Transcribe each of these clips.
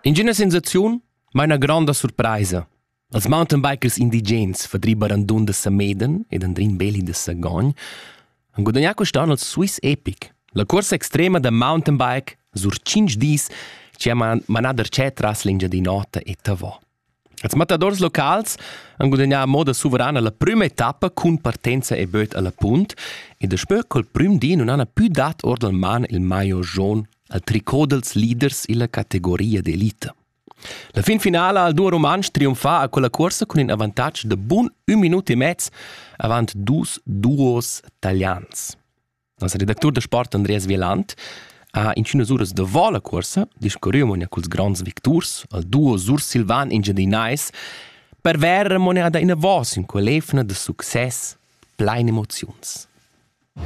Ingüna sensaziun maina gronda surpraisa. Els mountain bikers indigens verdriba randun da Sameden ed Andrin Beli da Sagogn han gudagnà quest'anno il Swiss Epic, la corsa extrema da mountain bike sur 5 dis che ha manà darchè tras l'Engiadin'Ota e Tavò. Els mattadors locals han gudagnà a moda suverana la prüma etappa cun partenza e böt alla punt e daspö col prüm di nun hana pü dat or dal man il maillot jaun al tricot dals leaders illa categoria d'elita. La fin finala al duo rumantsch triumfa a quella cuorsa cun in avantatg da bun ün minut e mez avant dus duos talians. Nossa redactur da sport Andreas Wieland ha intünas uras davo la cuorsa discurrü amò ina culs gronds victurs, al duo sursilvan engiadinais, per vair remunada inavos in quell'efna da success plein emoziuns.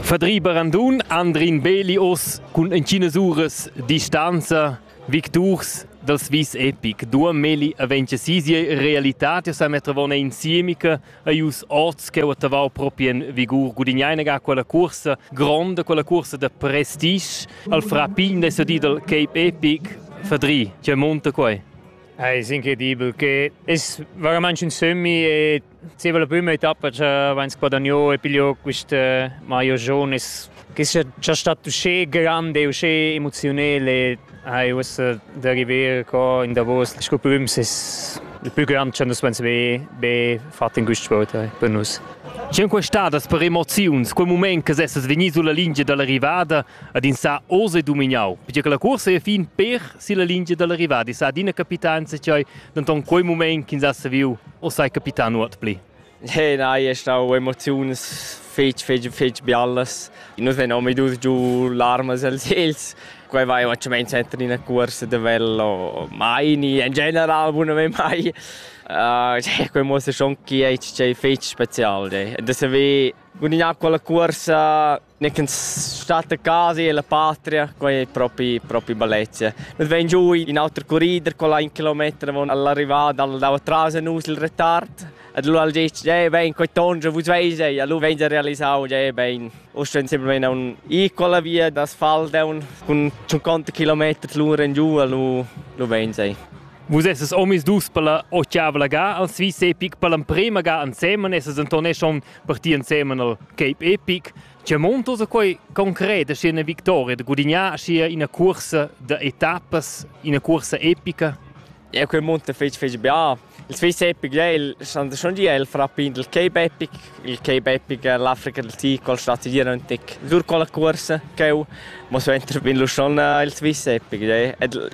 Fadri Barandun, Andrin Beli os cun inchinas uras distanza, victurs dals vis epic. Dua Meli aventja si sia realità, tia sa mettravona insiemica, ei us oz cheu attavau propi en vigur gudigneina ga quella cursa gronda quella cursa de prestige al fra pign de sedidel Cape Epic verdri che monta quei è incredibile che es veramente un semi e ci la prima etappa che wenn es guadagno e piglio questa maio giorno es Che stat uschè grand e uschè emoziunel e hai uossa da river co in davos sco prüms es il plü grand cha nus vains be be fat in quist sport per nus. Sün questadas per emoziuns, quel mument che essas vegni sulla lingia dall'arrivada ad in sa oz e dumignau, perché che la corsa è fin per sulla lingia dall'arrivada e sa adina capitans e chai, denton quel mument ch'ins ha saviu o sai capitan nuot pli. Eh nein, è stau emoziuns fetg, fetg, fetg bialas. Nus vein omadus giu larmas els els. Quei vai un tschament center in a cuors de vello mai ni in general bunamein mai. Uh, cioè, quei mostra schon chi è stau fetg special. De se ve bun in acqua la cuorsa Gnanc ün stat a casa e la patria, quai è propi, propi bellezia. Nus vegn giù in auter corrider, quella un kilometer avon all'arrivada, al dava tras a nus il retard. Ed allora al ditg, eh ben, quei tonge vus veis ei, allora vegn a realisau, eh ben. Usch vegn sempre vegn un i quella via d'asfalt un cun 50 km l'ura in giù, allora lu vegn ei. Vus esses omis dus per la ochiavla ga, als vis epic per l'emprema ga ansemen esses entonesson partì ensemen al Cape Epic. Tge montos a quei concret aschi ina victoria da gudignar aschi ina cursa da etappas, ina cursa epica? Ja, quel monte fece fece bia. Il Swiss Epic è il stand schon di il frappin del Cape Epic. Il Cape Epic è l'Africa del Tig col stati di Rontic. Sur con la corsa cheu mo so entrar bin lu schon il Swiss Epic.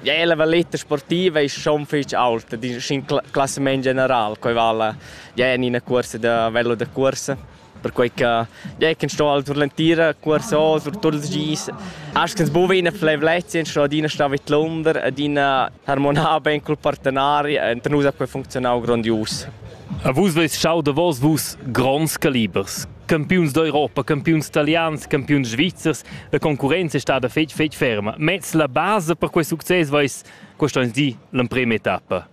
Ja, la valletta sportiva è schon fece alta, in classement general, coi vala Già en ina cuorsa da vella da cuorsa, perquei che già che sto sur l'entira cuorsa o sur tuts ils gis, asch che buva ina fleivlezia, sto adina star vid l'under, adina harmonar ben cul partenari, enta nus ha quei funzionau grondius. A vus veis schau davos vus gronds calibers. Campiuns d'Europa, campiuns italians, campiuns svizzers, la concurenza è stada fetg fetg ferma. Mez la base per quei success veis quest onns di l'emprema etappa.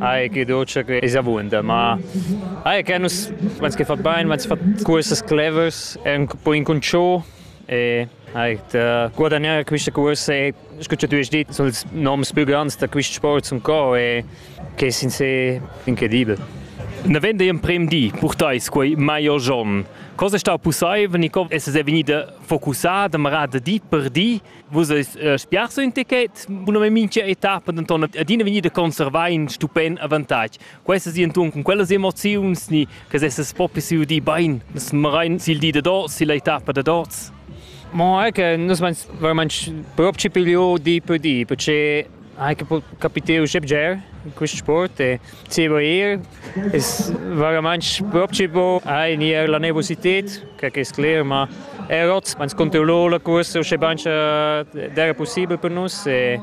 Ai, che dolce che es avunda, ma ai, che nus vans che fat bain, vans fat cursas clevers, è un po incunciò e ai, da guadagnare queste corse e scuccia tu es dit, sono ils noms più grandi da questi sport son co e che sin se incredibile. Na vende in prem di, purtais quei maior giorn. Cosa sta possibile, Nico? Es es venida focussada, marada di per di Vus eis uh, spiarso in ticket, buname mincha etappa denton adina vegnir da conservar in stupend avantatg. Questa si entun con quellas emoziuns ni che sesses propri si di bein, das marein sil di da dos, sil etappa da dos. Ma è che nus mein veramente proprio piglio di per di, perché anche capiteo Jebger in questo sport e Tibo ir es vairamaing propchi bo a inier la nervosited, que que es cler, ma er ot ans controllo la cuorsa usche bain cha d'eira pussibel per nus e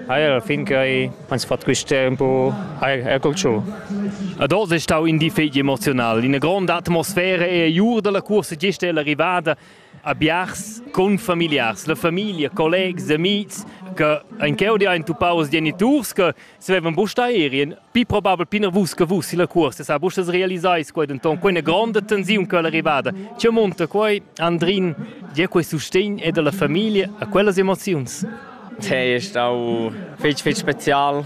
eir a fin quai ans fat quist'er ün po eir er col cho. Ad oz è stau in difet emoziunal. Ina gronda atmosfera e jur dalla cuorsa gest è l'arrivada a biars confamiliars, la famiglia, collegs, amics che ein cheu di ein tupaus geniturs che svevan busta erien pi probabel pina vus che vus si la cuorsa sa busta realisais quei denton quei una gronda tensiun che è arrivada ce monta quei Andrin dir quei sustegn e della famiglia a quellas emoziuns Te è stau fetg fetg special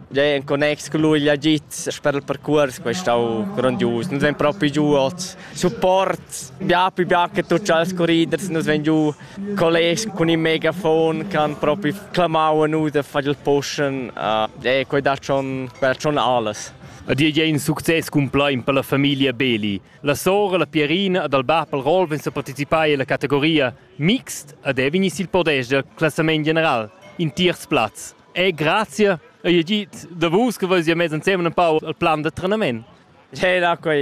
Già en connex con lui l'agit per il percurs quei stau grandius. Nus vegn propi giu oz. Support bia più bia che tutti els corriders nus vegn giu colleghi con il megafon che han propi clamau a nus de far il pushen. Uh, e quei dà schon per schon alles. A dir in success cumplein per la famiglia Beli. La sora, la Pierina ed il bab al Rolf sa participai alla categoria mixed ad Evinis il podest del classament general. In tiers plaz. E grazie, io dit da vus che vus ja mezz insieme un po' al plan da trenament. C'è l'acqua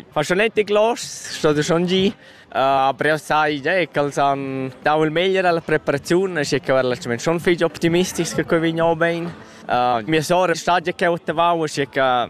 fascinante glos, sto schon gi. Uh, però sai già che els han dato il meglio alla preparazione, e che veramente sono figli optimistici che qui veniamo bene. Uh, mia sorella sta già che ottavavo, e che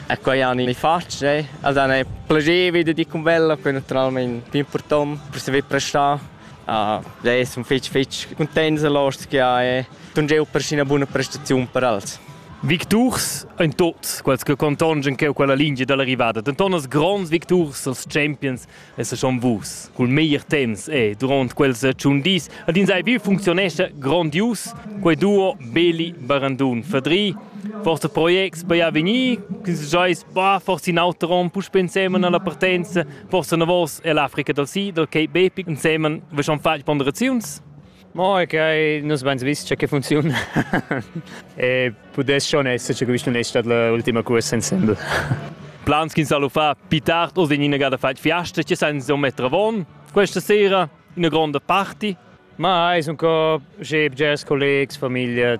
E quai han i fatg e els han plagevi da dir cun bella, quai naturalmein più important per saver prestar. Uh, e sono fitch fitch contents los che ha e tun jeu per ina buona prestazione per els. Victurs ein tots quels che contongen cheu quella lingia dall'arrivada, denton as gronds victurs, els champions esser schon vus. Cul meglier temps e durant quels tschun dis ad ins ei bil functionescha grondius quei duo Beli Barandun Fadri forse projects bei avegnir quins jois ba forse in auter rom puspe insemen alla partenza forse na vos e l'Africa dal Sid ok Bepi insemen vi schon fagli ponderaziuns Mo è che nus beins vis che funcziun e pudess schon esser che quist non è stat l'ultima cuorsa insembel. Plans ch'ins ha fa più tard oz in ina gada fat fiasta, che san insomma travon questa sera, una grande party. Ma es un co che jazz collegs, famiglia,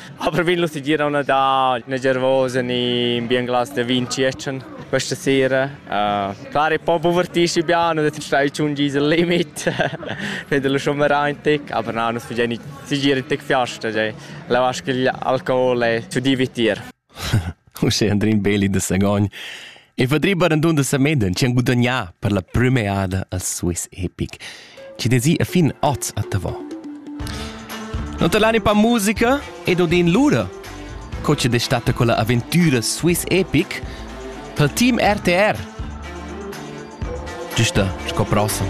Aber vin lustig dir auna da na gervosa ni bien glas de vin tschetschen questa sera. Uh, clar è po povertisci bia, non stai un gisel limit, fede lo sommerà in tec, aber no, non si si gira in tec fiasta, cioè, la vasca alcohol e su divitir. uschè Andrin Beli da Sagogn. E Vadri Barandun da Sameden ci han gudagnà per la prima eada al Swiss Epic. Ci desi a fin oz a Tavò. Non talani pa musica ed odin lura, co ci destata con la avventura Swiss Epic, tal team RTR. Giusta sco prossimo.